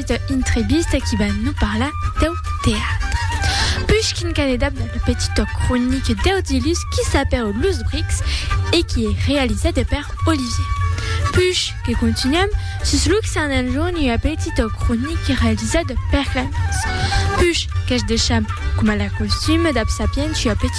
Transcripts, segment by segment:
Esta entrevista qui va nos parlar deu teatre. Pushkin qu'an edap dans le petit toc cronique deu dilús qui s'apèu Los Brics e qui es realisada per Olivier Puch que continuam sus Luxan en jorn ua petit toc cronique realisada per Clemence Puch qu'es de cham coma la costume dab Sapiens ua petit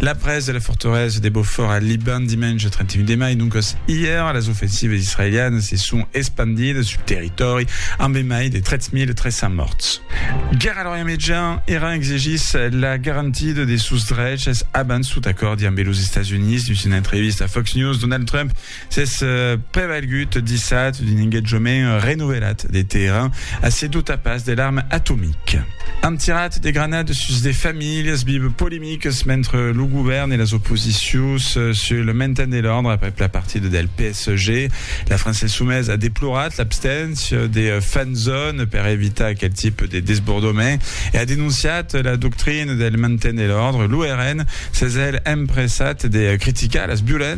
La presa de la fortalesa de Beaufort al Liban dimenge 31 de mai, doncas ièr, las ofensivas israelianas se son espandidas sul territòri amb de mai de 3.300 mòrts. Guèrra a l'Orient Mejan, Iran exigís la garantida de sos dreches abans tot acòrdi ambe los Estats Units. Dins una entrevista a Fox News, Donald Trump S'es prevalgut dissat d'un engatjament renovelat de Teheran a se dotar pas de l'arma atomica. An tirat de granades sus de familhas vive polemiques mentre lo govèrn e las oposicions sul le mainten de l'òrdre aprèp la partida del PSG. La França Insumesa a deplorat l'absténcia de fan zone per evitar aquel tipe de desbordament e a denonciat la doctrina del mainten de l'òrdre. Lo RN s'es hèl empressat de criticar las violéncias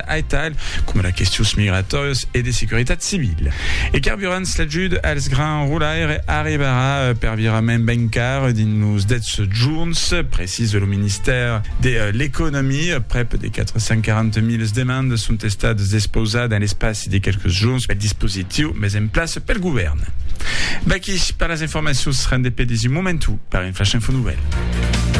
aital, coma las questions migratòrias e de securitat civila. E carburants, l'ajut als grans roulaires arribarà per virament ben car dins los 10 jorns, precisa lo ministèri de l'Economia. Prèp de 440 milas demandas son estadas despausadas en l'espaci de qualques jorns pel dispositiu mes en plaça pel govèrn. Vaqui per las informacions rendepedis un momentu per un flash info nouvèl.